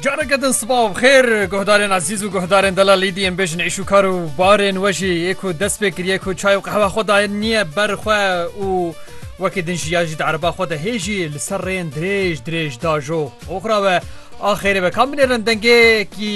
Careke din sibav xêr guhdarên ezîz û guhdarên dela lîdî em bêjin êş û kar û barên we jî yê ku dest pê kiriye ku çay û qehwa xwe daye niye ber xwe û wekî din jî ya jî di ereba xwe de hê jî li ser rêyên dirêj dirêj dajo oxra we axêrê ve kam binêrin dengêkî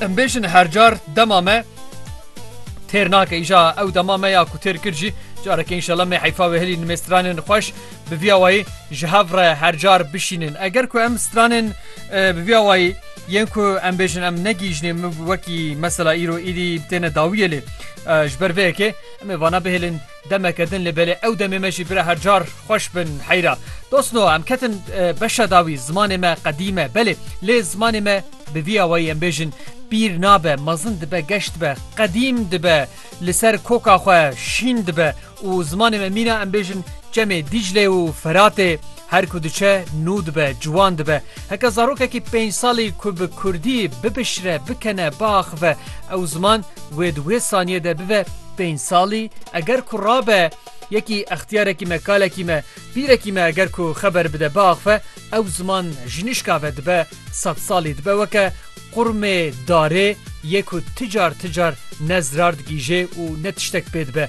Em bêjin her car dema me têr nake îja ew dema me ya ku têr kir jî careke înşela me heyfa wê hilî nimê stranên xweş bi vîya wayî ji hev re her car bişînin eger ku em stranên bi vîya wayî yên ku em bêjin em negîjinê min wekî mesela îro êdî têne dawiyê lê ji ber vê yekê em ê vana bihêlin Demeke din li belê ew demê me jî bira her car xweş bin heyra. Dost no em ketin beşa dawî zimanê me qedîm e belê lê zimanê me bi vî awayî em bêjin pîr nabe mezin dibe geş dibe qedîm dibe li ser koka xwe şîn dibe û zimanê me mîna em bêjin çemê Dîclê û Feratê Her ku diçe nû dibe, ciwan dibe. Heke zarokekî pênc salî ku bi kurdî bipişre, bikene, biaxive ew ziman wê di wê saniyê de bibe pênc salî, eger ku rabe yekî extiyarekî me, kalekî me, pîrekî me eger ku xeber bide, biaxive ew ziman ji nişka ve dibe sed salî. Dibe weke qurmê darê yê ku ti car ti car ne zirar digîjê û ne tiştek pê dibe.